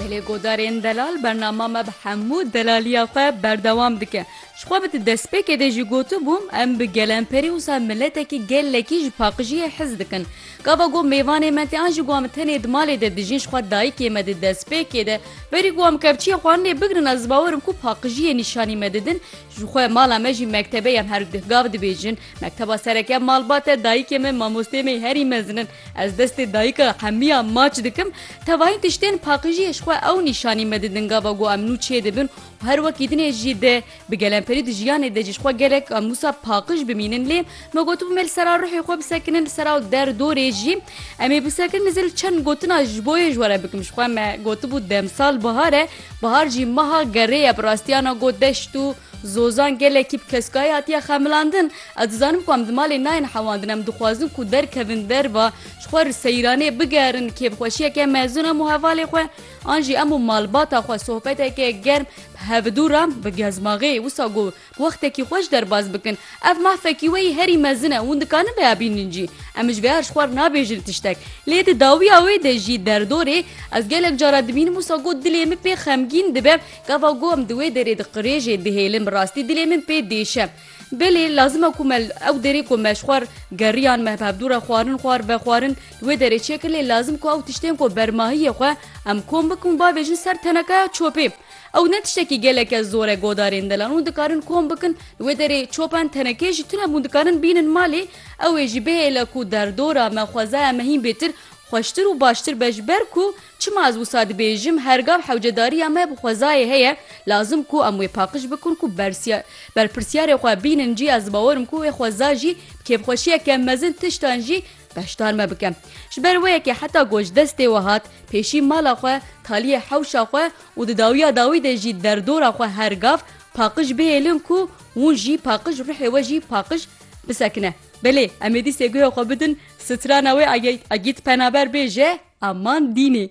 Gelê Godarên Delal bernama me bi hemû delaliya xwe berdewam dike. Ji xwe bi di destpêkê de jî gotibûm, em bi gelemperî wisa miletekî gelekî ji paqijiyê hez dikin. Gava got mêvanê me tê an jî got em tenê di malê de dijîn ji xwe dayikê me di destpêkê de berî got em kevçiyê xwarinê bigrin ez bawer im ku paqijiyê nîşanî me didin ji xwe mala me jî mektebe ya em her gav dibêjin Mekteba sereke malbat e, dayikê me mamosteyê me yê herî mezin in. Ez destê dayika hemiya maç dikim. Tevahîn tiştên paqijiyê ji xwe ew nîşanî me didin gava ku em nû çê dibin û her wekî din ê jî de bi gelemperî di jiyanê de jî ji xwe gelek em wisa paqij bimînin lê me gotibû me li sera ruhê xwe bisekinin li sera û der dorê jî em ê bisekin dizil çend gotina ji bo yê ji we re bikim ji xwe me gotibû demsal bihar e bihar jî meha gerê ye bi rastiyana got deşt û Zozan gelekî bi keskayî hatiye xemilandin. Ez dizanim ku em di malê nayên hewandin, em dixwazin ku derkevin derva, ji xwe re seyranê bigerin, kêfxweşiyeke mezin em û hevalê xwe an jî em û malbata xwe sohbeteke germ bi hevidû re bi gezmaxê wisa got bi wextekî xweş derbas bikin. Ev mahfekî wê yî herî mezin e, hûn dikarin vêya bînin jî. Em ji vêya re ji xwe re nabêjin tiştek. Lê di dawiya wê de jî derdorê ez gelek caran dibînim wisa got dilê min pê xemgîn dibe, Gava ku em di wê derê diqirêjin, dihêlin bi rastî dilê min pê diêşe. Belê lazim e ku me li ew derê ku me ji xwar geriyan, me bi hevdû re xwarin, xwar vexwarin li wê derê çêkin lê lazim ku ew tiştên ku bermahiyê xwe em kom bikin û bavêjin ser tenekaya çopê. Ew ne tiştekî geleke zor e godarên delan hûn dikarin kom bikin li wê derê çopan tenekê jî tune hûn dikarin bînin malê ew ê jî bihêle ku derdora me xwezaya me hîn bêtir xweştir û baştir be ji ber ku Çima ez wisa dibêjim hergav hewcedariya me bi xwezayê heye, lazim ku em wê paqij bikin ku bersiya berpirsyarê xwe bînin jî ez dibawerim ku wê xweza jî bi kêfxweşiyeke mezin tiştan jî beşdar me bike. Ji ber wê yekê heta ku ji destê we hat pêşî mala xwe, taliyê hewşa xwe û di dawiya dawî de jî derdora xwe hergav paqij bihêlin ku hûn jî paqij ruhê we jî paqij bisekine. Belê em ê dîsê guhê xwe bidin Strana wê Agît Penaber bêje, Aman dînê.